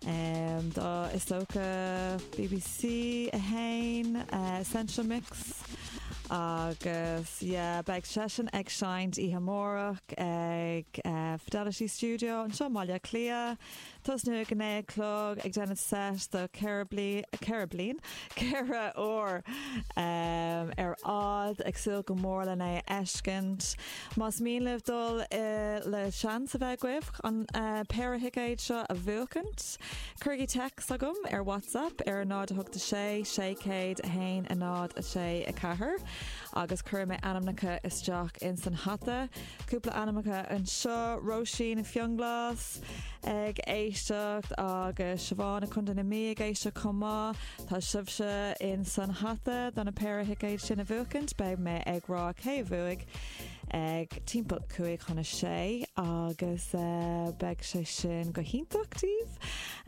Tá is dócha bbc 1, Essential Mix agus yeah beidh seisean ag seinnt oíche amárach ag Fidelity Studio anseo i mBaile Átha Cliath. Tosnú ag a naoi a chlog ag déanamh set de ceithre bliain, ceithre bliain? ceithre uair ar fad. Ag súil go mór lena fheiscint. Más mian libh dul le seans a bheith agaibh an péire thicéad seo a bhuachaint, cuirigí text agam ar WhatsApp ar 086 601 064 agus cuirfidh mé ainmneacha isteach ins an hata. Cúpla ainmneacha anseo, Róisín i Fionnglás ag éisteacht agus Siobhán i Co. na Mí ag éisteacht chomh maith. Tá sibhse in san hata do na péire thicéid sin a bhuachaint. Beidh mé ag rá cé a bhuaigh ag timpeall 5 chun 6 agus eh, beidh sé sin go hiontach daoibh.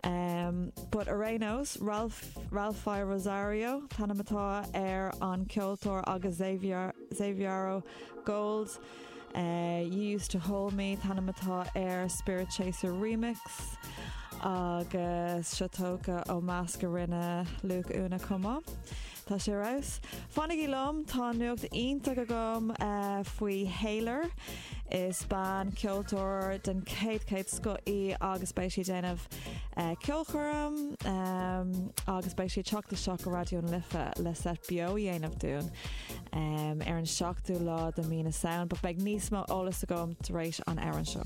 Em, but ar aon nós, Ralph, Ralphie Rosario, t-ainm atá ar an ceoltóir agus Xavier, Xaviero Gold, You used to hold me, t-ainm atá ar Spiritchaser Remix agus seo tógtha ó meascán a rinne Luke Una chomh maith. Tá sé ar fheabhas. Fanaigí liom, tá nuacht iontach agam faoi Haylor. Is bean ceoltóir den chéad, chéad scoth í agus beidh sí ag déanamh ceolchoirm agus beidh sí ag teacht isteach go Raidió na Life le set beo a dhéanamh dúinn. ar an seachtú lá de Mí na Samhain, but beidh níos mó eolas agam tar éis an amhráin seo.